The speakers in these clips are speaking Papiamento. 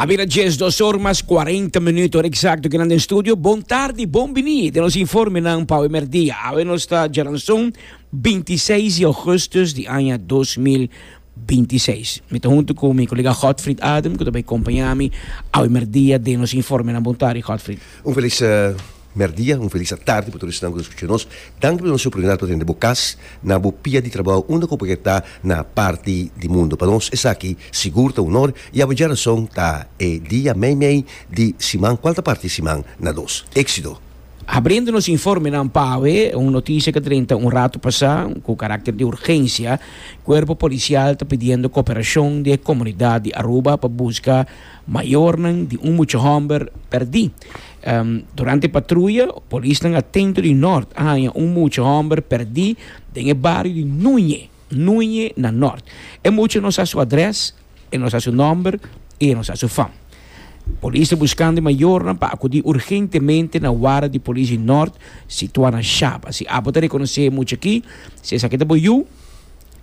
A bira djes dos or mas cuarenta minuut or exacto kinan den studio. Bon tardi, bon bini den nos informenan pa awe merdia. Awe nos ta djaranson bintiseis di augustus di aña dos mil bintiseis. Mi ta huntu ku mi kolega Godfrid Adem ku ta bai kompañami awe merdia den nos informenan. Bon tardi Godfrid. Un felis. Merdia, un felis atardi pa tur esnan ku ta skucha nos. Danki pa nos oportunidat pa tende bo kas na bo pia di trabou unda ku bo ke ta na parti di mundu. Pa nos esaki sigur ta un onor i awe dje rason ta e dia meimei di siman ku al ta parti siman na dos. Eksido! Abriendo nos informenan pa awe, un notisia ku a drenta un ratu pasá ku karakter di urgensia, Kuerpo Polisial ta pidiendo kooperashon di e komunidat di Aruba pa buska Mayornan di un mucha hòmber pèrdí. Durante patruya, polisnan atento di Nòrt a haña un mucha hòmber pèrdí den e bario di Nuñe, Nuñe na Nòrt. E mucha no sa su adrès, e no sa su nòmber i e no sa su fam. Polis ta buskando e mayornan pa akudí urgentemente na wara di polis di Nòrt situá na Shaba. Si abo ta rekonosé e mucha akí, si esaki ta bo yu,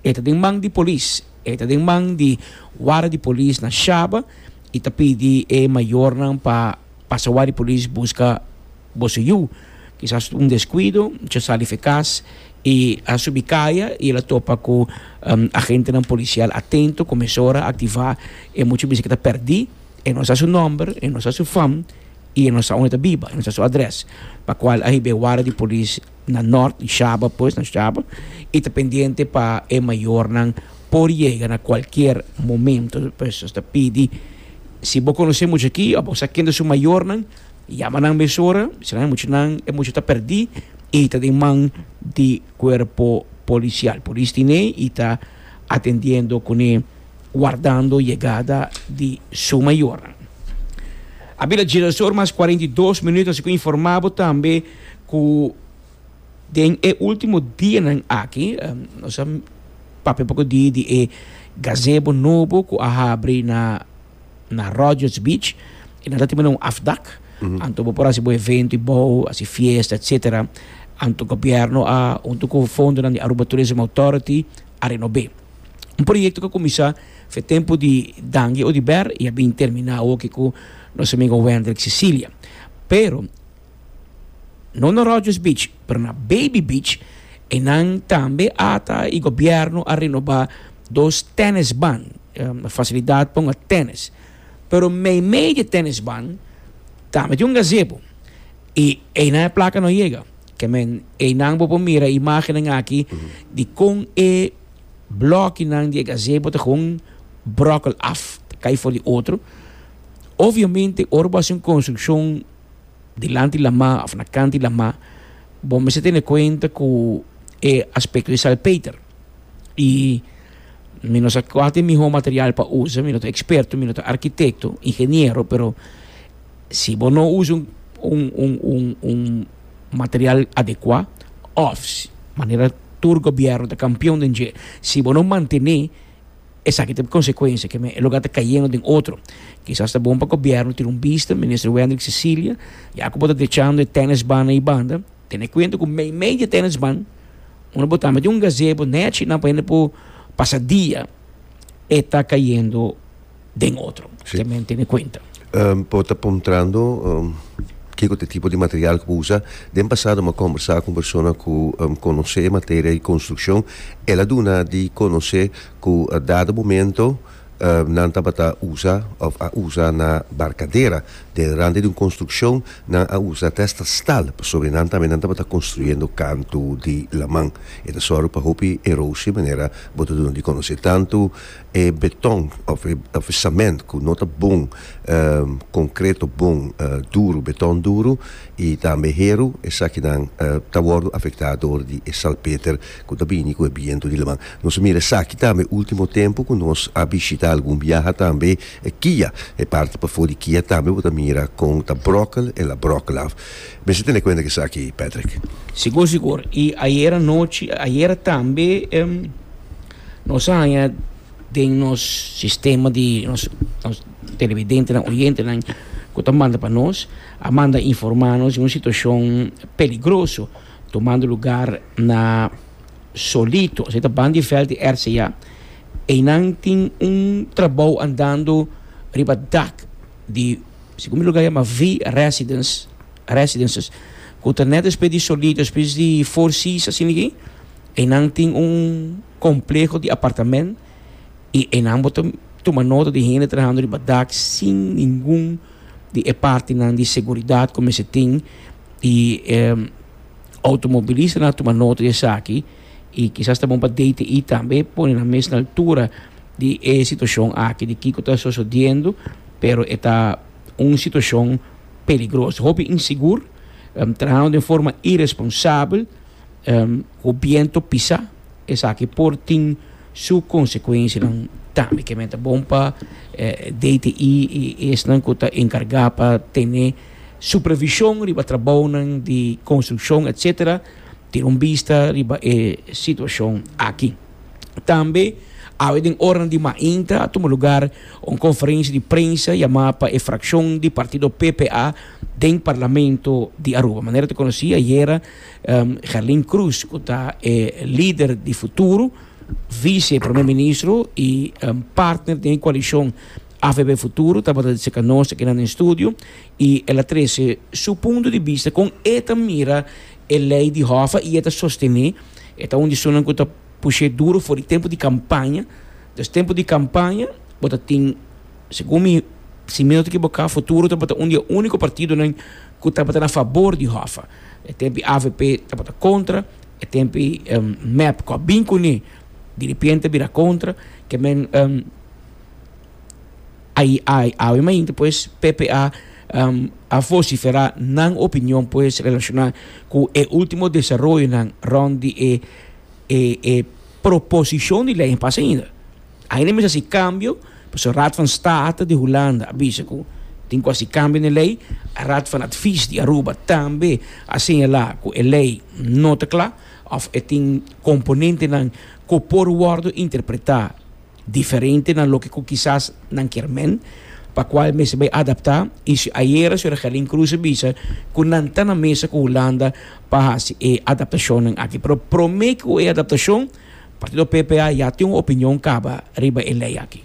e ta den man di polis. E ta den man di wara di polis na Shaba y ta pidi e mayornan pa pasa wara di polis busca boso yu. Kisas un descuido, mucha a sali fecas y a subi caya y el a topa cu agentenan policial atento, cu mesora activa e mucha bisa cu ta perdi, e no sa su nomber, e no sa su fam y e no sa unda ta biba, e no sa su adres, pa cual a hiba e wara di polis. na nort di Shaba pues na Shaba y ta pendiente pa e mayornan por yega na cualkier momento pues nos ta pidi si bo conoce mucha aki o bo sa kende su mayornan yama nan mesora bistra nan mucha nan e mucha ta perdi y ta den man di cuerpo policial polis tine y ta atendiendo cune wardando yegada di su mayornan. Abila Gina Sor mas cuarenta y dos minuto así cu informa bo tambe. Ku den e ultimo dianan aki nos a papia poko di di e gazebo nobo ku a habri na na Rogers Beach i nan ta timina un afdak anto bo por hasi bo evento i bou hasi fiesta etsetera anto gobièrnu a huntu ku fondonan di Aruba Tourism Authority a renob'é un proyekto ku a kuminsá for e tempu di Dange Odiber i a bin terminá awo aki ku nos amigo Wendrick Cecilia pero. No na Rogers Beach, pero na Baby Beach enan tambe ata y gobierno a renoba dos tennisban, facilidad pa un a tennis. Pero meimei di e tennisban tambe tin un gazebo y einan e placa no yega. Ke men, einan bo por mira e imagennan aki di kon e blokinan di e gazebo ta gewoon brokel af, ta kai for di otro. Obviamente ora bo haci un construccion. dilanti lamá of na kanti lamá, bo mester tene kuenta ku e aspekto di salpeter. I mi no sa kual ku e mihó material pa usa, mi no ta eksperto, mi no ta arkitekto, ingeniero, pero si bo no usa un, un, un, un material adekuá òf manera tur gobièrnu ta kampion den dje, si bo no mantené. Esaki ta e konsekuensia, ke men e lugar ta kayendo den otro. Kisas ta bon pa gobièrnu tira un bista, Minister Wendrick Cecilia, ya ku bo ta dechando e tènisbannan i banda, tene kuenta ku meimei di e tènisban unda bo ta mete un gazebo, nèchi nan pa hende por pasa dia, e ta kayendo. den otro. Sí. Te men tene cuenta. Um, por ta puntrando um, qué que tipo de material que usa. Den pasado me conversar con persona que um, conoce materia de construcción. Él a duna de conocer que uh, dado momento uh, nan tabata usa of a usa na barcadera. Den rande de un construcción nan a usa testa stal. Pasobra nan también nan tabata construyendo canto de laman. E ta zorg pa hopi erosie manera bo ta duna de conocer tanto E beton of e of e sament ku no ta bon konkreto bon duru beton duru i tambe heru esakinan ta wòrdu afektá dor di e salpeter ku ta bini ku e bientu di laman. Nos a mira esaki tambe último tempu ku nos a bishitá algun biaha tambe e kia e parti pafó di kia tambe bo ta mira kon ta bròkel el a bròkel af. Mester a tene kuenta esaki Patrick. Sigur sigur i ayera nochi ayera tambe. Nos a haña den nos sistema di nos televidentenan, oyentenan ku ta manda pa nos, a manda informá nos di un situashon peligroso tumando lugar na Solito, esei ta Bandy Veldt di RCA. Einan tin un trabou andando riba dak di, segun mi lugar yama V-Residence, Residences, ku ta nèt despues di Solito, despues di Four Seas, asina ke? Enan tin un kompleho di apartamènt i enan bo ta tuma nota di hende trahando riba dak sin ningun di e partinan di seguridat ku mester tin i e outomobilistanan a tuma nota di esaki. I kisas ta bon pa DTI tambe pone nan mes na altura di e situashon aki di kiko ta sosodiendo, pero e ta un situashon peligroso. Hopi insigur, trahando den forma iresponsabel. Ku bientu pisa esaki por tin su konsekuensianan tambe. Ke men ta bon pa DTI i esnan ku ta enkargá pa tene supervishon riba trabounan di konstrukshon etsetera tin un bista riba e situashon aki. Tambe awe den oranan di mainta a tuma lugar un konferensia di prensa yamá pa e frakshon di partido PPA den Parlamento di Aruba. Manera ta konosí ayera. Gerlin Cruz cu ta e lider di Futuro, vice primer ministro y partner den e coalicion AVB Futuro tabata di cerca nos aki na den studio y el a trece su punto di bista con e ta mira e ley di Hoffa y e ta sostene e ta un di esunnan cu ta pushe duro for di tempo di campaña, dus tempo di campaña bo ta tin segun mi si mi no ta ekiboka Futuro tabata un di e unico partidonan cu tabata na fabor di Hoffa. E tempi avp tabata contra, e tempi mep cu a bin cu ni diripiente bira contra, ke men awe mainti pues ppa a vocifera nan opinion pues relaciona cu e ultimo desaroyonan rond di e proposicion di ley pasa ainda. Ainda mester hasi kambio pasobra Raad van State di Hulanda a bisa ku tin ku hasi kambio na e lei. Raad van Advies di Aruba tambe a señalá ku e lei no ta kla òf e tin komponentenan ku por wòrdu interpretá diferente na loke ku kisas nan kier men, pa kua e mester bai adaptá. I si ayera señora Gelin Cruz a bisa ku nan ta na mesa ku Hulanda pa hasi e adaptashonnan aki. Pero promé ku e adaptashon. Partido PP a ya tin un opinion caba riba e ley aki.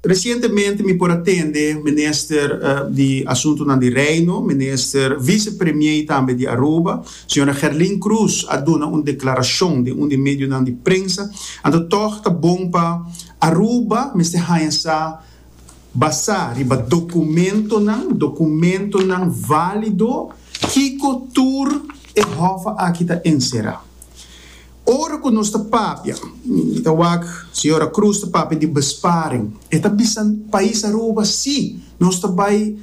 Recientemente mi por a tende Minister di Asuntonan di Reino, Minister Vice Premier y tambe di Aruba, Sra. Gerlin Croes a duna un declaracion den un di medionan di prensa, anto tog ta bon pa Aruba mester haña sa basa riba documentonan, documentonan valido, kico tur e hof aki ta encera. Ora ku nos ta papia, mi ta wak Señora Cruz ta papia di besparing, e ta bisa pais Aruba si, nos ta bai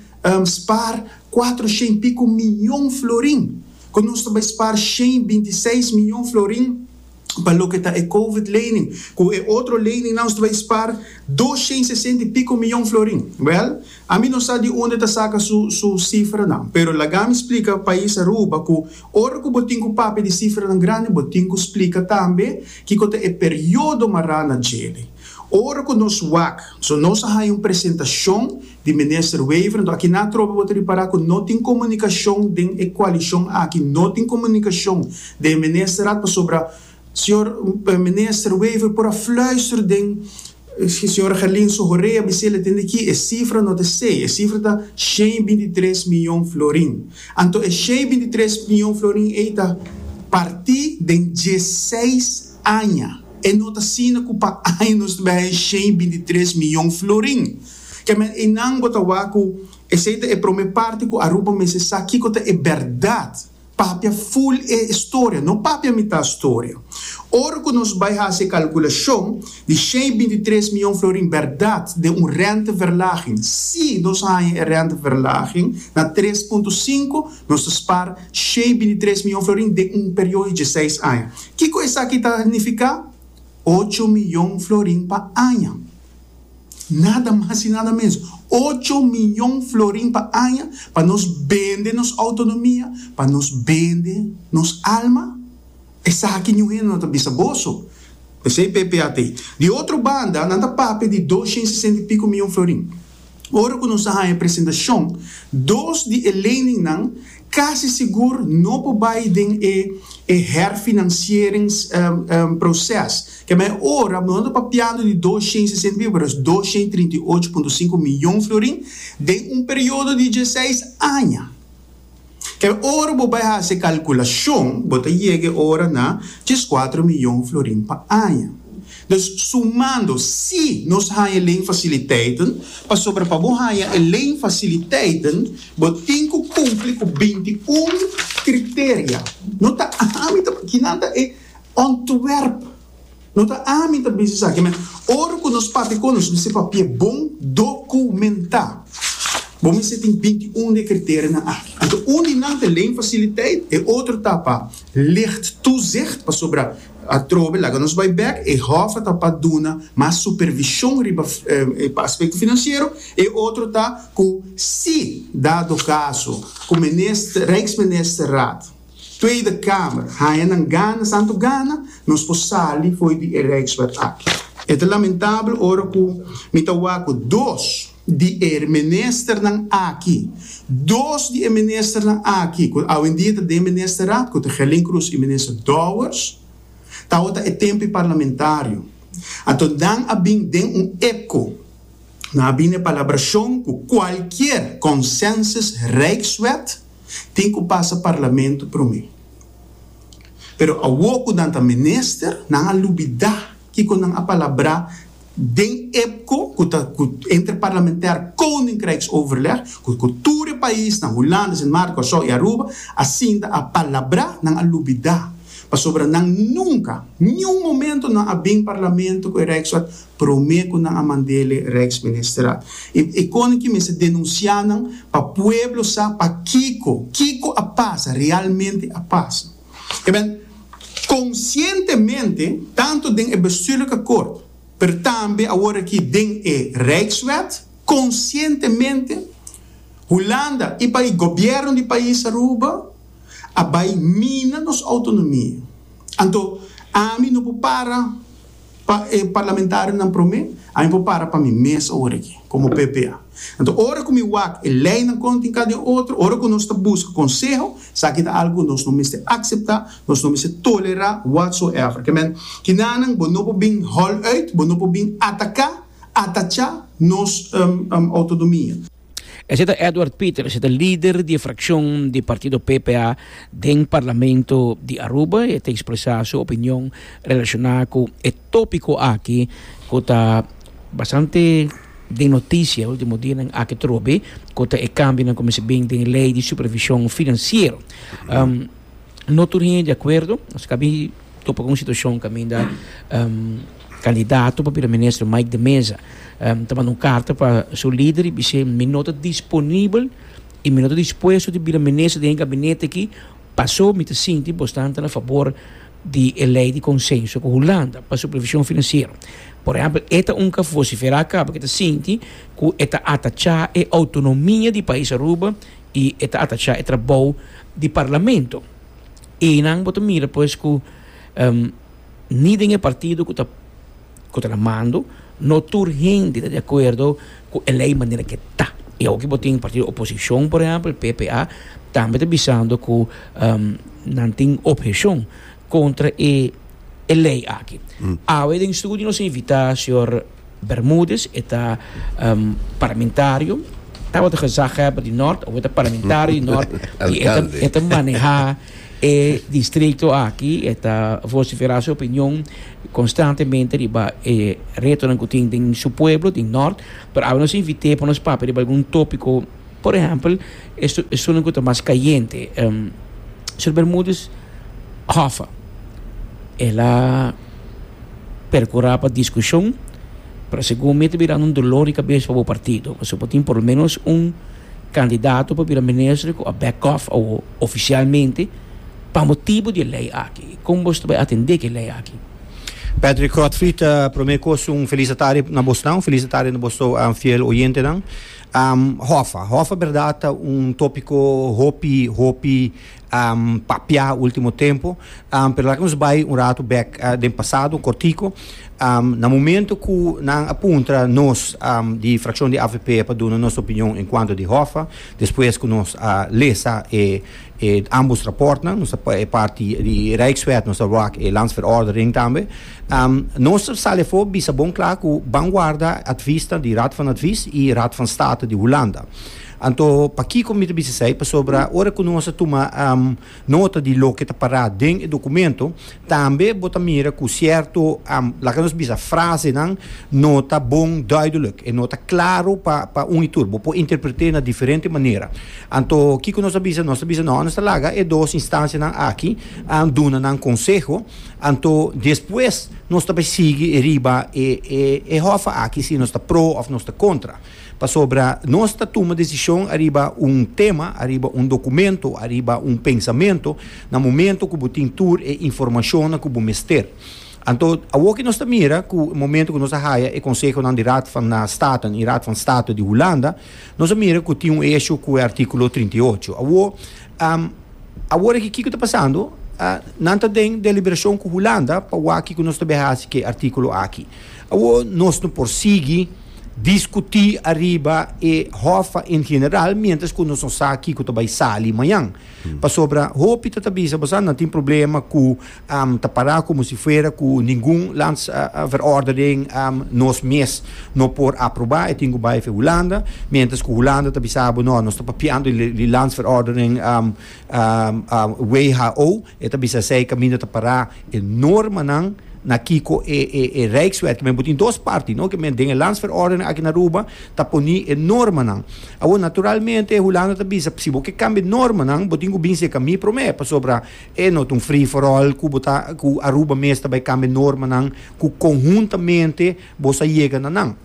spar kuater shen piku miyon florin, ku nos ta bai spar shen binti seis miyon florin pa loke ta e covid lening, ku e otro lening nan nos ta bai spar dos shen sesenta i piku miyon florin. Bel, ami no sa di unde ta saka su sifranan, pero laga mi splika pais Aruba ku Ora ku bo tin ku papia di sifranan grandi, bo tin ku splika tambe kiko ta e periodo mará na djele. Ora ku nos wak, so nos a haña un presentashon di Minister Wever, anto aki na trobe bo ta ripará ku no tin komunikashon den e koalishon aki, no tin komunikashon den e Ministerat pasobra Señor Minister Wever por a fluister den Señora Gerlin su horea bis'é le tende ki e sifra no ta esei, e sifra ta shen binti tres mion florin. Anto e shen binti tres mion florin ei ta. Parti den dieseis aña. E no ta asina ku pa aña nos ta bai haña shen binti tres mion florin. Kemen einan bo ta wak ku esei ta e prome parti ku Aruba mester sa kiko ta e bèrdat Papia ful e storia, no papia mitat storia. Ora cu nos bay haci e calculacion di shei binti tres miyon florin berdad den un renteverlaging, si nos haya e renteverlaging na tres punto sinku, nos ta spar shei binti tres miyon florin den un periodo di dieseis aña. Kico esaki ta nifica? Ocho miyon florin pa aña. Nada mas y nada menos. Ocho miyon florin pa aña pa nos bende nos autonomia, pa nos bende nos alma? Esaki ñu hende no ta bisa boso. P'esei PPA ta ei. Di otro banda, nan ta papia di doshent sesenta y pico miyon florin. Ora cu nos a haña presentacion, dos di e leningnan casi sigur no por bay den e e herfinancieringsproces. Kema e ora nos ta papiando di dos shen sesenta y ocho, pero es dos shen trinta y ocho punto sinku miyon florin den un periodo di dieseis aña. Kema e ora bo bay haci e calculacion bo ta yega e ora na diescuatro miyon florin pa aña. Dus sumando si nos haña e lei fasiliteiten, pasobra pa bo haña e lei fasiliteiten bo tin ku kumpli ku binti un kriteria. No ta ami ta, kinan ta e ontwerp, no ta ami ta bisa esaki, me ora ku nos papia kon nos mester papia bon dokumentá. Bo mester tin binti un di e kriterianan aki. Anto un di nan ta e lei fasiliteit, e otro ta pa licht toezicht, pasobra, Atrobe laga nos bai bek, e hof a ta pa duna mas supervishon riba pa aspekto finansiero, e otro ta ku si dado kaso ku minister, Rijksministerraad, Tweede Kamer haña nan gana santu gana, nos por sali fo'i di e Rijkswet aki. E ta lamentabel ora ku mi ta wak ku dos. di e ministernan aki. Dos di e ministernan aki cu awendia ta den Ministerat, cu ta Gelin Croes y Minister Dowers, tawata e tempi parlamentario. Anto nan a bin den un epco, nan a bin na e palabracion cu cualkier consensus Rijkswet tin cu pasa Parlamento prome. Pero awo cu nan ta minister, nan a lubida kico nan a palabra. Den EPCO, cu ta cu Interparlamentair Koninkrijksoverleg, cu cu tur e paisnan, Hulanda, Sint Maarten, Curaçao y Aruba, a sinta a palabrá, nan a lubidá, pasobra nan nunca, niun momento nan a bin Parlamento cu e Rijksraad prome cu nan a mand'ele Rijksministerraad. E e Koninkje mester denunciá nan pa pueblo sa pakico, kico a pasa, realmente a pasa. Amen. Conscientemente, tanto den e bestuurlijke kort, pero tambe awor aki den e Rijkswet, conscientemente, Hulanda y pa'i gobierno di pais Aruba a bai mina nos autonomia. Anto, ami no por para. Pa e parlamentarionan promé, a mi por para pa mi mes ora aki, komo PPA. Anto, ora ku mi wak e leinan kontin kada den otro, ora ku nos ta buska konseho, esaki ta algu ku nos no mester akseptá, nos no mester tolerá, whatsoever. Kemen, kinanan bo no por bin hòl uit, bo no por bin ataká, atachá nos outonomia. Esei ta Edward Pieter, esei ta lider di e frakshon di partido PPA den parlamento di Aruba. E ta ekspresá su opinion relashoná ku e tópiko aki ku ta bastante den notisia e último dianan aki trobe, ku ta e kambionan ku mester bin den lei di supervishon finansiero. No tur hende di akuerdo, nos ka bin. topa ku un situashon kaminda kandidato pa Primèr Minister Mike de Meza ta manda un karta pa su lider i bis'é mi no ta disponibel i mi no ta dispuesto di bira minister den e gabinete aki pasó mi ta sinti bos tan ta na fabor di e lei di konsenso ku Hulanda pa supervishon finansiero. Por ehèmpel e ta un ka vosiferá aká pasobra e ta sinti ku e ta atachá e outonomia di pais Aruba i e ta atachá e trabou di parlamento. Enan bo ta mira pues ku ni den e partido ku ta ku ta na mando no tur hende ta di akuerdo ku e lei manera ke ta. I awor ke bo tin partido oposishon por ehèmpel e PPA tambe ta bisando ku nan tin opheshon kontra e lei aki. Awe den studio nos invitá señor. Bermudez, e ta un parlamentario, tabata gezaghebber di Nort, awe ta parlamentario di Nort, y e ta, e ta maneha e distrito aki, e ta vocifera su opinion constantemente riba e retonan cu tin den su pueblo, den Nort, pero awe nos invite pa nos papia riba algun topico. Por ehèmpel, e sunat ku ta mas kayente, Sr. Bermúdez Hoffa, el a perkurá pa diskushon, pero segun mi ta bira un dolor di kabes pa bo partido, pasobra bo tin por lo menos un kandidato pa bira minister ku a bèk òf awo ofisialmente pa motibu di e lei aki. Kon boso ta bai atendé ku e lei aki? Patrick Godfrey, Promé kos un felisatario na bos nan, un felisatario na bos tou fiel oyentenan. Hòffa. Hòffa bèrdat ta un tòpiko hopi hopi papiá último tempu, pero laga nos bai un ratu bèk den pasado, kòrtiku. Na momentu ku nan a puntra nos di frakshon di avp pa duna nos opinion en kuantu di hòffa, despues ku nos a lesa e e ambos rapòrtnan, nos ta e parti di Rijkswet, nos ta wak e Landsverordening tambe. Nos ta sali afó bisa bon kla ku ban warda advisnan di Raad van Advies i Raad van State di Hulanda. Anto pakiko mi ta bisa esei? Pasobra ora ku nos a tuma nota di loke ta pará den e dokumento, tambe bo ta mira ku sierto, laga nos bisa frasenan, no ta bon duideluk, e no ta klaru pa pa un i tur. Bo por interpret'é na diferente manera. Anto kiko nos ta bisa? Nos ta bisa, no, nos ta laga e dos instansianan aki duna nan konseho. Anto despues nos ta bay sigui e riba e e e hofa aki si nos ta pro of nos ta contra. Pasobra nos ta tuma decision ariba un tema, ariba un documento, ariba un pensamento na momento cu bo tin tur e informacionnan cu bo mester. Anto awo ki nos ta mira cu momento cu nos a haya e consehonan di Raad van Staten y Raad van State di Hulanda nos a mira cu tin un issue cu e articulo trinta i ocho. Awo. Awor aki kiko ta pasando? Nan ta den deliberashon ku Hulanda pa wak kiko nos ta bin hasi ku e artikulo aki. Awor nos no por sigui diskutí ariba e hòf en general miéntras ku nos no sa kiko ta bai sali mañan. Pasobra hopi ta ta bisa bo sa nan tin problema ku. Am ta pará komo si fuera ku ningun lands verordening am nos mes no por aprobá. E tin ku bai fen Hulanda, miéntras ku Hulanda ta bisa bo, no, nos ta papiando di lands verordening am who. E ta bisa esei kaminda ta pará e normanan na kiko e e Rijkswet, ke men bo tin dos parti, no, ke men den e lands verordening aki na Aruba ta poni e normanan. Awor, naturalmente Hulanda ta bisa, si bo ke kambia e normanan bo tin ku binse ka mi promé, pasobra. E no ta un free for all cu bo ta cu Aruba mes ta bay cambia normanan cu conhuntamente bo sa yega na nan.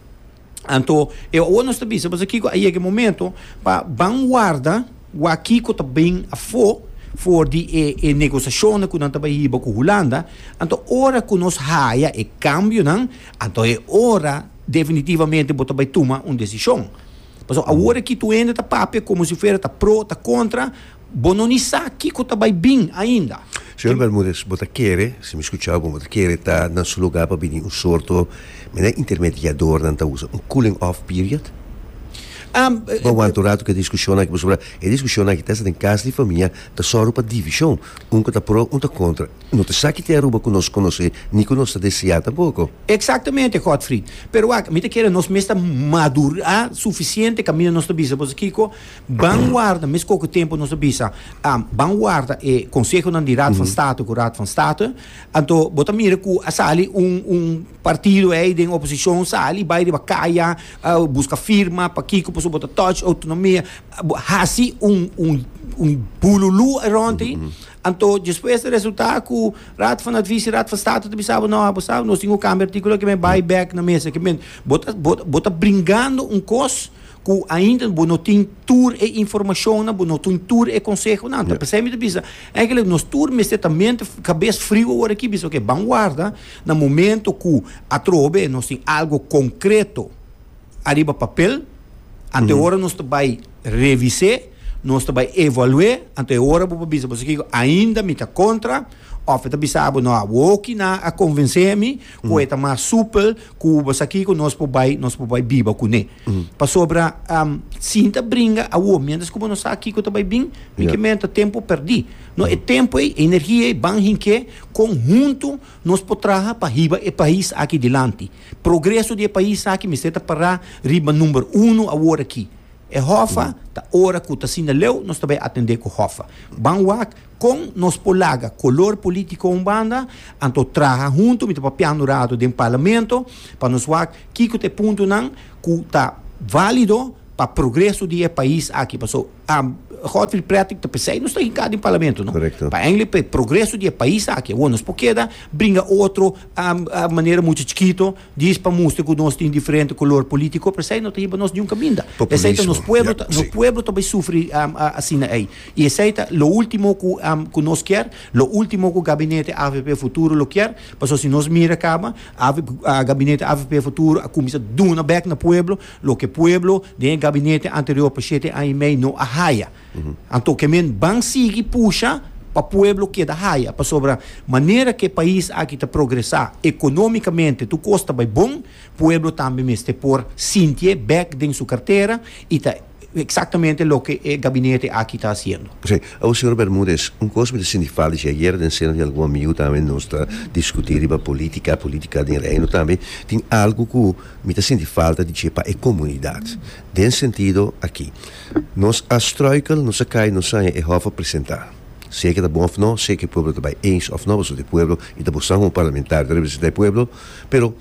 Anto e awor nos ta bisa boso kico a yega e momento pa ban warda wak kico ta bin afo for di e e negociacionnan cu nan ta bay hiba cu Hulanda. Anto ora cu nos haya e cambionan anto e ora definitivamente bo ta bay tuma un decision. Pasobra awor aki tu hende ta papia como si fuera ta pro ta contra. Bo no ni sa kiko ta bai bin ainda. Señor Bermudez, bo ta kere, si mi skucha'u bon, bo ta kere ta nan su lugá pa bini un sorto, men e intermediador nan ta usa, un cooling off period? Bo aguanta un ratu ku e diskushonnan aki pasobra e diskushonnan aki ta hasta den kas di famia, ta sòru pa divishon, un ku ta pro, un ta kontra. No ta sa ki te Aruba ku nos konosé ni ku nos ta deseá tampoko. Eksaktamente, Godfried. Pero wak, mi ta kere nos mes ta madurá sufisiente kaminda nos ta bisa, bo sa kiko? Ban warda, mes koke tempu nos a bisa, ban warda e konsehonan di Raad van State ku Raad van State, anto bo ta mira ku a sali un un partido ei den oposishon sali bai riba kaya buska firma pakiko pasobra bo ta touch outonomia, bo hasi un un un bululú around di, anto despues ta resulta ku Raad van Advies, Raad van State ta bisa bo no bo sa nos tin ku kambia artikulo aki men bai bek na mesa, bo ta bo ta bringando un kos. cu ainda bo no tin tur e informacionnan, bo no tin tur e consehonan. Ta p'esei mi ta bisa, eigenlijk nos tur mester ta mente cabes friu aworaki, bisa oke, ban warda na momento cu atrobe nos tin algo concreto ariba papel, anto e ora nos ta bay revis'é, nos ta bay evalu'é, anto e ora bo por bisa boso kico, ainda mi ta contra, of e ta bisa bo, no, awoki nan a convencé mi cu e ta mas supel, cu bo sa kico, nos por bay, nos por bay biba cun'é. Pasobra sin ta bringa awo, mientras cu bo no sa kico ta bay bin, mi ke menta tempo perdi. No, e tempo ey, e energia ey ban hinke con hunto nos por traha pa hiba e pais aki dilanti. Progreso di e pais aki mester ta para riba number uno awor aki. E hofa ta ora cu ta asina leu, nos ta bay atende cu hofa. Ban wak Kon nos por laga kolor polítiko un banda, anto traha huntu, mi ta papia un ratu den Parlamento pa nos wak kiko ta e puntonan ku ta válido pa progreso di e pais aki. Paso, Godfrey Pretic ta p'esei nos ta hinká den Parlamento, no? Pa eindelijk pa e progreso di e pais aki. Awor nos por keda bringa otro manera muchu chikito. Djis pa mustra cu nos tin diferente color politico, p'esey no ta hiba nos niun caminda. Esey ta nos pueblo, nos pueblo ta bay sufri asina ey. Y esey ta lo ultimo cu cu nos kier, lo ultimo cu Gabinete avp Futuro lo kier, pasobra si nos mira caba, Gabinete avp Futuro a cuminsa duna bek na pueblo, loke pueblo den e Gabinete anterior pa shete aña y mey no a haya. Anto ke men ban sigui pusha pa pueblo keda haya, pasobra manera ke e pais aki ta progresá ekonómikamente, tur kos ta bai bon, pueblo tambe mester por sintié bèk den su kartera i ta eksaktamente loke e gabinete aki ta hasiendo. Sí. Awor, señor Bermudez, un kos mi ta sinti falta i ayer den seno di algun amigu tambe nos ta diskutí riba polítika, polítika den Reino tambe, tin algu ku mi ta sinti falta di dje pa e komunidat. Den sentido aki. Nos a struikel, nos a kai, nos saña e hof a presenta. Sea ke ta bon of no, sea ke pueblo ta bai eens of no pasobra e pueblo i ta buska un parlamentario ta representa e pueblo, pero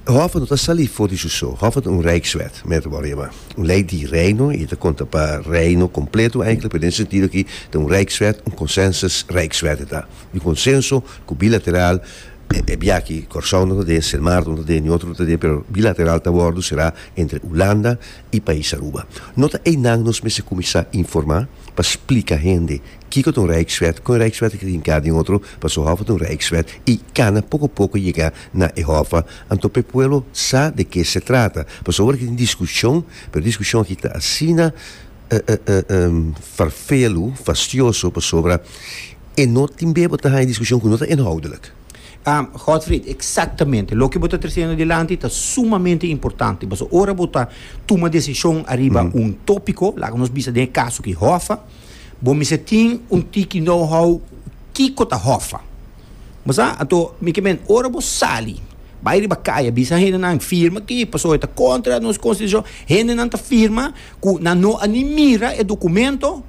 hof no ta sali for di su so, hof ta un rijkswet, men ta wòrdu yama, un lei di reino i ta konta pa reino kompleto eindelijk, pero den e sentido aki ta un rijkswet, un consensus rijkswet ta, un konsenso ku bilateral. E biachi Corsou no ta dé, Sint Maarten no ta dé, ni otro no ta dé, pero bilateral ta wordo será entre Hulanda y Pais Aruba. No ta einan nos mester cuminsa informa pa splica hende kico ta un Rijkswet, con e Rijkswet ta kier hinca den otro pasobra Hoffa ta un Rijkswet y cana poco poco yega na e Hoffa. Anto p'e pueblo sa de ke se trata pasobra awor aki tin discusion, pero discusion aki ta asina farfelu, fastioso pasobra E no tin bia bo ta haña diskushon ku no ta inhoudelik. Godfried, Eksaktamente. Loke bo ta trasendo dilanti ta sumamente importante. Pasobra ora bo ta tuma desishon ariba un topiko, laga nos bisa den e kaso ki hòffa, bo mester tin un tiki know-how kiko ta hòffa. Bo sa? Anto, mi ke men, ora bo sali, bai riba kai a bisa hendenan, firma aki, pasobra e ta kontra nos konstitushon. Hendenan ta firma ku nan no a ni mira e dokumento.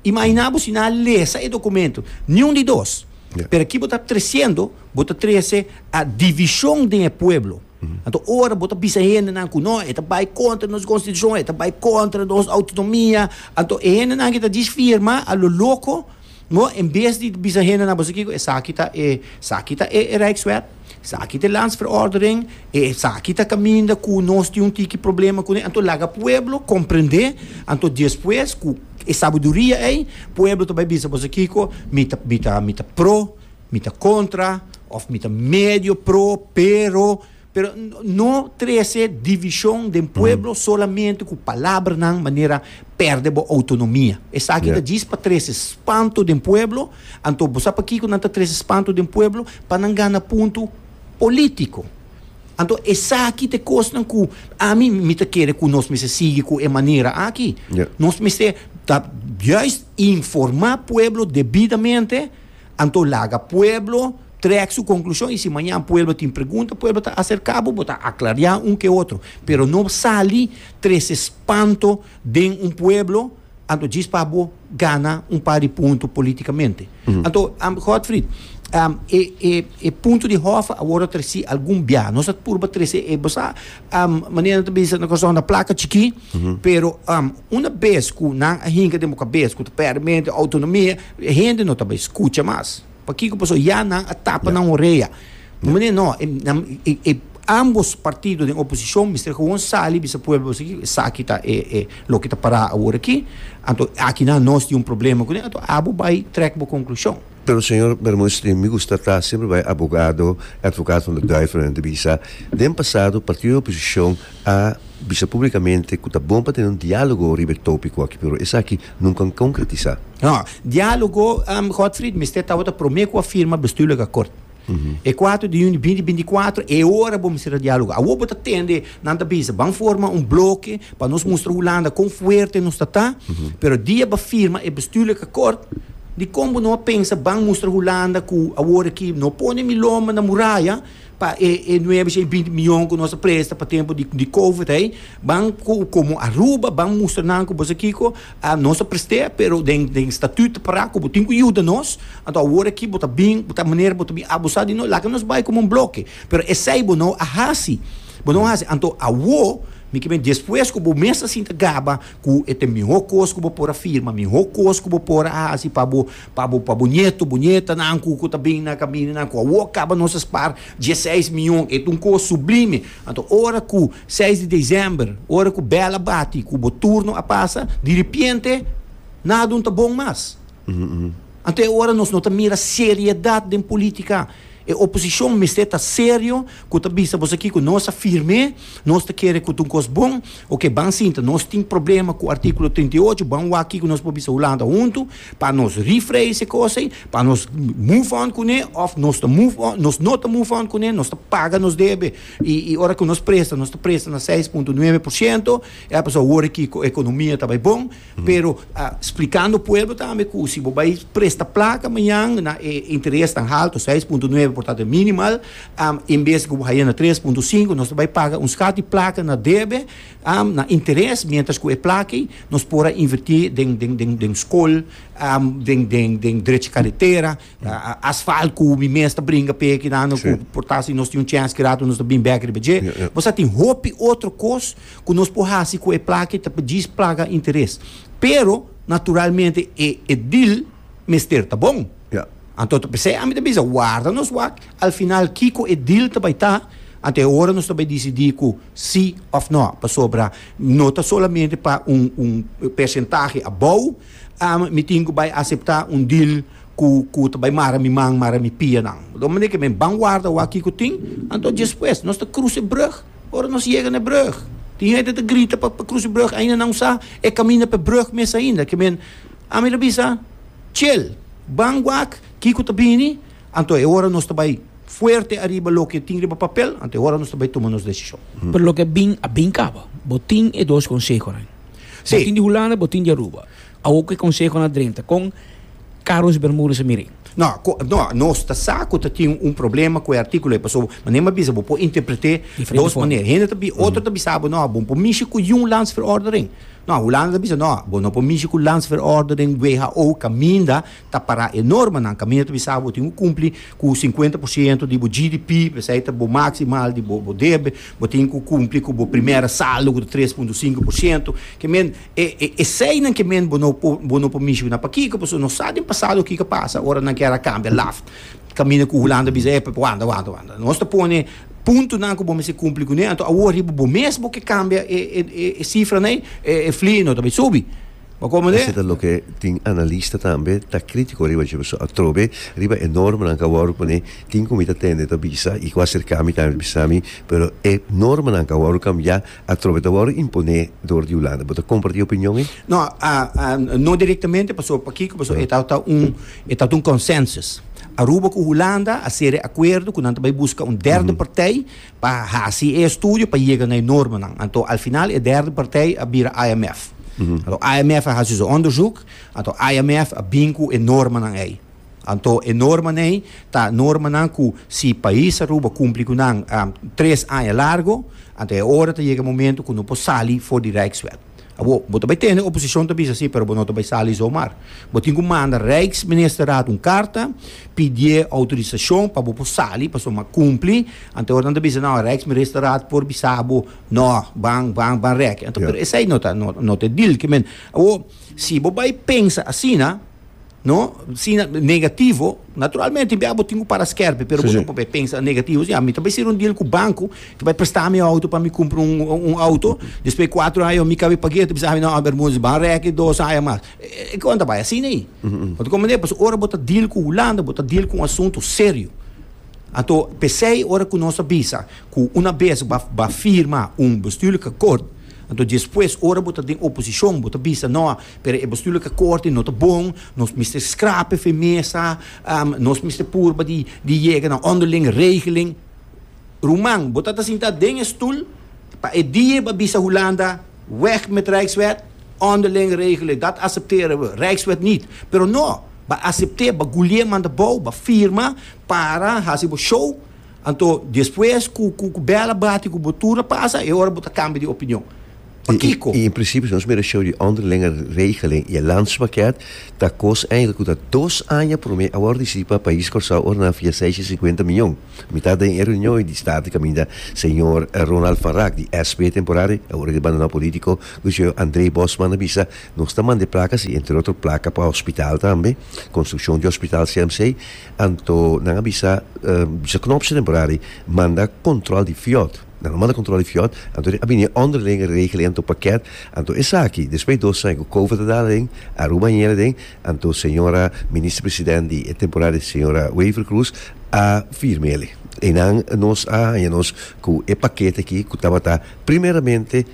Imaginá bo si nan a lesa e dokumento, niun di dos. Pero ki bo ta tresiendo, bo ta trese a divishon den e pueblo. Anto ora bo ta bisa e hendenan ku no, e ta bai kontra nos konstitushon, e ta bai kontra nos outonomia, anto e hendenan ku ta dish firma a lo loko, no, en bes di bisa hendenan, bo sa kiko, esaki ta e, esaki ta e rijkswet. Esaki ta e Lands Verordening, e esaki ta caminda cu nos tin un tiki problema cune, anto laga pueblo comprende, anto despues cu e sabiduria ey, pueblo ta bay bisa boso kico, mi ta, mi ta, mi ta pro, mi ta contra, of mi ta medio pro, pero, pero no trece division den pueblo solamente cu palabranan manera perde bo autonomia, esaki ta djis pa trece spanto den pueblo, Anto bo sa pakico nan ta trece espanto den pueblo? Pa nan gana punto politico. Anto esaki ta e cosnan cu ami mi ta kere cu nos mester sigui cu e manera aki. Ja. Nos mester ta juist informa pueblo debidamente, anto laga pueblo trek su conclusion y si mañan pueblo tin pregunta pueblo ta acerca bo, bo ta aclaria un ke otro. Pero no sali trece espanto den un pueblo Anto djis pa bo gana un par di punto politikamente. Anto, Godfrid, e punto di hof awor a tresi algun bia. Nos a purba trese e. Bo sa, manera nan ta bisa na Corazon, na plaka chikí, pero una bes ku nan a hinka den bo kabes ku ta pèrdè mente, autonomia, e hende no ta bai skucha mas. Pakico? Pasobra ya nan a tapa nan orea. Bo mane no, e ambos partido den oposicion mester gewoon sali bisa pueblo boso aki, esaki ta e loke ta para awor aki, anto aki nan nos tin un problema cu nan, anto abo bay trek bo conclusion. Pero señor Bermudez Lin, mi gusta ta semper bay abogado, advocaat van de duivel nan ta bisa, den pasado partido den oposicion a bisa publicamente cu ta bon pa tene un dialogo riba e topico aki, pero esaki nunca un concretisa. No. Dialogo, Godfried, mester tabata prome cu a firma bestuurlijke akkoord. E kuater di juni binti binti kuater, e ora bo mester a dialoga. Awor bo ta tende, nan ta bisa, ban forma un bloke pa nos mustra Hulanda kon fuerte nos ta ta, pero dia bo a firma e bestuurlijke akkoord, dikon bo no a pensa, ban mustra Hulanda ku awor aki no pone mi lomba na muraya, pa e e nuebe shei binti mion ku nos a presta pa tempu di di covid ei ban ku komo Aruba ban mustra nan ku bo sa kiko a nos a prest'é pero den den statut ta pará ku bo tin ku yuda nos anto awor aki bo ta bin bo ta manera bo ta bin abusá di nos laga nos bai komo un bloke pero esei bo no a hasi bo no a hasi anto awor mi kimin despues ku bo mes ta sinta gaba ku e te mihó kos ku bo por a firma mihó kos ku bo por a hasi pa bo Pa bo, pa bo nieto, bo nietanan ku ku ta bin na kamindanan ku awor kaba nos a spar dieseis mion. E ta un kos sublime. Anto ora ku seis di desèmber, ora ku bèl a bati ku bo turno a pasa, diripiente nadun ta bon mas. Anto e ora nos no ta mira seriedat den politika. E oposishon mester ta serio ku ta bisa boso aki ku nos a firme, nos ta kere ku ta un kos bon. Oke, ban sinta. Nos tin problema ku artíkulo trinta i ocho. Ban wak ki ku nos por bisa Hulanda huntu. Pa nos refrain se cos ey, pa nos move on cune of nos ta move on, nos no ta move on cune, nos ta paga nos debe y y ora cu nos presta, nos ta presta na seis punto nueve por ciento, ya pasobra wor aki cu economia ta bay bon, pero ah splicando pueblo tambe cu si bo bay presta placa mayan na e interes tan halto, seis punto nueve por tanto e minimal, am en bes cu bo haya na tres punto cinco, nos ta bay paga un scat di placa na debe. na interes mientras cu e plaki nos por a inverti den den den den school den den den drecha caretera asfalt cu mi mes ta bringa p'e kinan cu por ta si nos tin un chance kirato nos ta bin bek riba dje bosa tin hopi otro cos cu nos por haci cu e plaki ta djis plaga interes pero naturalmente e e dil mester ta bon. Yeah. Anto p'esei ami ta bisa warda nos wak, al final kiko e deal ta bai ta, anto e ora nos ta bai disidí ku sí òf nò, pasobra no ta solamente pa un un persentahe abou mi tin ku bai aseptá un deal ku ku ta bai mara mi man, mara mi pianan. Di un manera ke men ban warda wak kiko tin, anto djes pues nos ta krus e brùg, ora nos yega na e brùg tin hende ta grita pa krus e brùg ainda nan usá e kaminda p'e brùg mes ainda ke men Ami lo bisa, Tjel, ban wak kiko ta bini, anto e ora nos ta bai fuerte ariba loke tin riba papel, anto e ora nos ta bai tuma nos desishon. Pero loke a bin, a bin kaba. Bo tin e dos konsehonan. Sí. Bo tin di Hulanda, bo tin di Aruba. Awo ku e konsehonan a drenta, kon Carlos Bermudez a mira ei? No, ko, no, nos ta sa ku ta tin un problema ku e artikulo ei, pasobra manera mi a bisa bo por interpret'é Diferente dos forma. manera. Hende ta bi, otro ta bisa bo, no, bo por mishi ku yun landsverordening. No, Hulanda ta bisa, No, bo no por mishi ku landsverorder den who kaminda ta para e normanan, kaminda ta bisa bo tin ku kumpli ku sinkuenta por siento di bo GDP, p'esei ta bo maksimal di bo bo debe, bo tin ku kumpli ku bo primera saldo ku ta tres punto sinku por siento, ke men e e eseinan ke men bo no por bo no por mishi ku nan. Pakiko? Pasobra no sa den pasado kiko a pasa ora nan kier a kambia laft. Kaminda ku Hulanda bisa, Epa, wanda, wanda, wanda. Nos ta pone puntunan ku bo mester kumpli kuné, anto awor riba bo mes bo ke kambia e e e sifranan ei, e e fli no ta bai subi. Bo komo ta Esei ta loke tin analista tambe ta kritiko riba dje beso atrobe riba e normanan ku awor pone tin ku mi ta tende ta bisa i ku aserkámi tambe ta bisa mi pero e normanan ku awor kambiá Atrobe ta wòrdu imponé dor di Hulanda. Bo ta kompartí e opinion ei? No, no direktamente, pasobra pakiko? Pasobra e tabata un, e tabata un konsènsus. Aruba ku Hulanda a sere akuerdo ku nan ta bai buska un derde partij pa hasi e estudio pa yega na e normanan. Anto al final e derde partij a bira IMF. Anto IMF a hasi su onderzoek, anto IMF a bin ku e normanan ei. Anto e normanan ei ta normanan ku si pais Aruba kumpli ku nan tres aña largo, anto e ora ta yega e momento ku no por sali for di Rijkswet. Awor, bo ta bai tende oposishon ta bisa si, pero bo no ta bai sali zomar. Bo tin ku manda Rijksministerraad un karta, pidié outorisashon pa bo por sali pasobra bo a kumpli. Anto e ora nan ta bisa, nau, Rijksministerraad por bisa bo, nò, ban, ban, ban rèki. Anto, pero esei no ta, no ta e dil. Ke men, awor, si bo bai pensa asina. No, si na negativo, naturalmente bia bo tin ku para skèrpi, pero bo ta prope pensa negativo, ya mi ta bai seri un deal ku banku, e ta bai prestá mi outo pa mi kumpra un un outo, despues kuatro aya mi kabe pag'é, e ta bisa mi no, bermudus, ban rèki dos aya mas. E kon ta bai asina ei. Bo ta komprendé? Pasobra ora bo ta deal ku Hulanda, bo ta deal ku un asuntu serio. Anto p'esei ora ku nos a bisa ku unabes bo a firma un bestuurlijke akkoord, Anto despues ora bo ta den oposicion bo ta bisa no pero e bestuurlijke corte no ta bon nos mester scrape fe mesa nos mester purba di di yega na onderling regeling ruman bo ta ta sinta den e stoel pa e die bo a bisa Hulanda weg met rijkswet onderling regeling dat acepteren we rijkswet niet pero no ba acepte ba gulie manda bou ba firma para hasi bo show. Anto, despues ku bèl a bati ku bo tur a pasa, e ora bo ta kambia di opinion. Pakiko? I en prinsipio, si nos mira e shou di onderlinge regeling i e landspakket, ta kos eindelijk ku ta dos aña promé a wòrdu disidi pa pais Kòrsou ora nan a fia seis i sinkuenta mion. Mitad den e reunion di State kaminda señor Ronald van Raak di SP temporari, awor el a bandoná polítiko, ku di señor André Bosman a bisa, Nos ta manda e plaka si, entre otro plaka pa hospital tambe, konstrukshon di hospital CMC, Anto nan a bisa dje knòp dje temporari manda kòntròl di fiòt. Nan lo manda kòntròl di fiòt, anto a bini e ònder den e regel ei anto pakèt. Anto esaki despues dos aña ku Kovo ta dal den Aruba yera den, anto señora Minister President di e temporari señora Wever-Croes a firma el. Einan nos a haña nos ku e pakete aki ku tabata primeramente,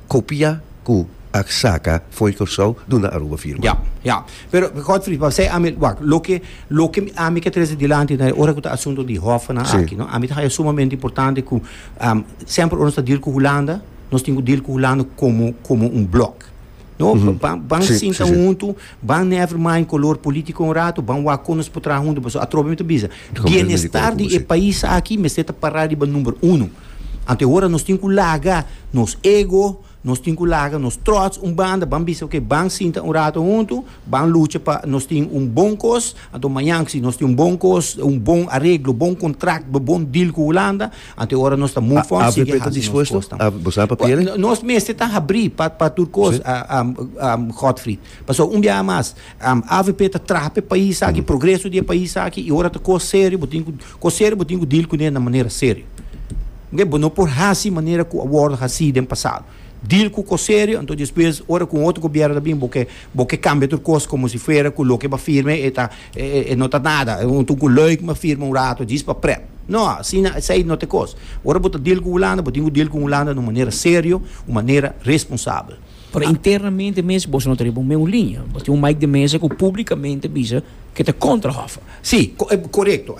Kopia ku ak saka foi Kòrsou duna Aruba firma. Ya, ya. Pero, Godfrey, pa sey ami, wak, loke, loke ami ke trese dilanti na e ora ku ta asunto di hòfnan Si. aki, no, ami ta haya sumamente importante ku, semper ora nos ta deal ku Hulanda, nos tin ku deal ku Hulanda komo, komo un blòk. No, mm -hmm. ban, ban sí, sinta sí, sí. huntu, ban never mind color político un rato, ban wak con nos potra huntu, paso atrobe me te bisa. Bienestar di e país aquí, me seta para riba number uno. Ante hora nos tin ku laga, nos ego, nos tin ku laga, nos trots un banda, ban bisa, ok, ban sinta un rato huntu, ban lucha pa nos tin un bon kos, anto mañan si nos tin un bon kos, un bon arreglo, bon contract, bon deal ku Holanda, Anto ora nos ta move on sigue hasi nos kosnan. AVP ta dispuesto? Bo sa pa piel? Nos mester ta habri pa tur kos, Godfried. Pasobra un biaha mas, avp ta traha pa e pais aki, progreso di e pais aki, i ora ta kos serio, bo tin ku, kos serio bo tin ku deal kuné na manera serio. Bo no por hasi manera ku a wòrdu hasi den pasado. Deal cu cos serio, anto despues ora cu un otro gobierno ta bin bo ke bo ke cambia tur cos como si fuera cu loke ba firme e ta e e e no ta nada, e un tucu leuk ma firma un rato djis pa prep. No, asina esey no ta e cos. Ora bo ta deal cu Hulanda bo tin cu deal cu Hulanda na un manera serio, un manera responsabel. Pero internamente mes boso no ta riba un meun liña. Bo tin un Mike de Meza cu publicamente bisa ke ta contra Hoffa. Sí, korekto.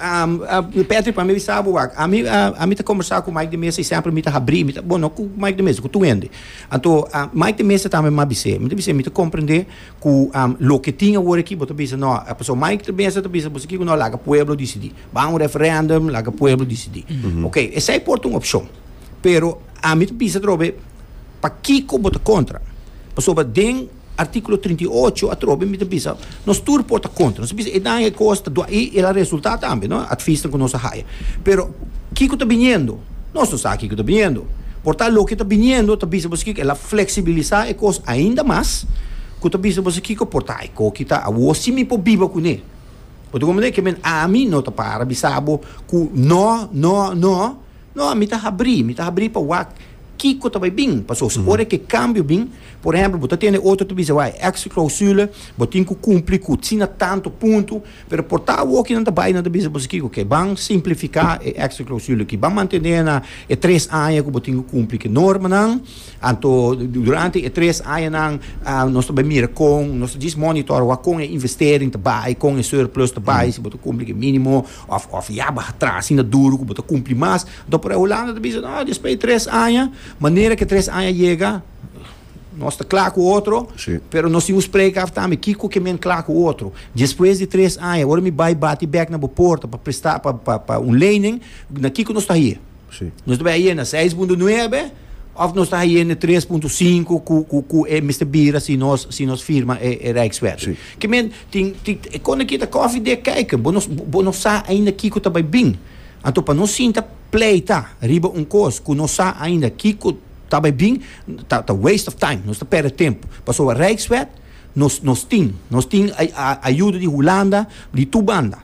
Patrick, pa mi a bisa bo wak. Ami, ami ta kombersá ku Mike de Mesa i sèmpri mi ta habrí, mi ta, bo no ku Mike de Mesa, ku tur hende. Anto, Mike de Mesa tambe mi a bis'é, mi ta bis'é, mi ta komprendé ku loke tin awor aki bo ta bisa nò, pasobra Mike de Mesa ta bisa boso aki ku nò laga pueblo disidí. Ban un referèndum, laga pueblo disidí. Ok, esei por ta un opshon. Pero ami ta bisa atrobe pakiko bo ta kontra? Pasobra den. Artíkulo trinta i ocho atrobe mi ta bisa nos tur por ta kontra. Nos ta bisa e daño e kos ta dua i el a resultá tambe, no? Atfisnan ku nos a haya. Pero kiko ta biniendo? Nos no sa kiko ta biniendo. Por ta loke ta biniendo ta bisa boso kiko el a fleksibilisá e kos ainda mas ku ta bisa boso kiko por ta e koki ta awor si mi por biba kuné. Bo ta komprendé? Ke men ami no ta para bisa bo ku nò, nò, nò. No, mi ta habrí, mi ta habrí pa wak kiko ta bai bin. Paso si ora ke kambio bin, por ehèmpel, bo ta tene otro ta bisa bo, hay extra clausule, bo tin ku kumpli ku asina tantu puntu, pero por ta awoke nan ta bai i nan ta bisa bo, Kiko ke ban simplifiká e extra clausule akí, ban mantené nan e tres aña ku bo tin ku kumpli ku e normanan, anto durante e tres añanan nos ta bai mira kon, nos ta djis monitor wak kon e investering ta bai, kon e surplus ta bai, si bo ta kumpli ku e mínimo. Of of ya baha tras asina duru ku bo ta kumpli mas. Anto por e Hulanda ta bisa, No, despues di tres aña, manera ku e tres aña yega, nos ta kla ku otro, Sí. pero nos tin ku spreka af tambe kiko ke men kla ku otro. Despues di tres aña, ora mi bai bati bèk na bo porta pa presta, pa, pa, pa un lening, na kiko nos ta hie? Nos ta bai a yena seis punto nuebe of nos ta hayene tres punto sinku ku ku ku e mester bira si nos si nos firma e e rijkswet. Sí. Ke men tin tin kon aki ta koffie dik kijken. Bo no bo no sa ainda kiko ta bai bin. Anto pa nos sinta pleita riba un kos ku no sa ainda kiko ta bai bin ta ta waste of time. Nos ta perde tempu. Pasobra rijkswet nos nos tin nos tin a a ayuda di Hulanda di tur banda.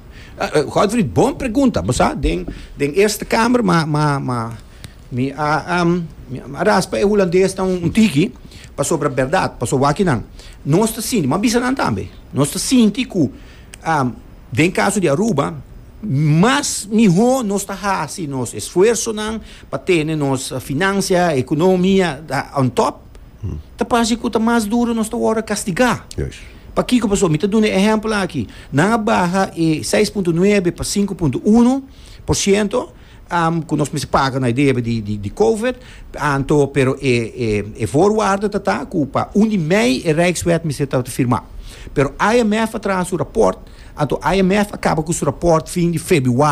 Godfrey, bon pregunta. Bo sa, den, den Eerste Kamer, ma, ma, ma, mi a, um, mi a raspa e Hulandes ta un, un tiki, pasobra bèrdat, pasobra wak akinan, nos ta sinti, m'a bisa nan tambe, nos ta sinti ku, um, den kaso di Aruba, mas mihó nos ta hasi nos esfuersonan pa tene nos finansia, ekonomia, ta on top. ta parse cu ta mas duro nos ta wordo castiga. Yes. Pakico paso? Mi ta duna e ehempel aki. Nan a baha e seis punto nuebe pa sinku punto uno por ciento, am, cu nos mester paga na e debe di, di, di Covid, anto, pero e, e, e voorwaarde ta ta cu pa un di mei e Rijkswet mester ta firma. Pero IMF a traha su rapport, anto IMF a caba cu su rapport fin di febiuari.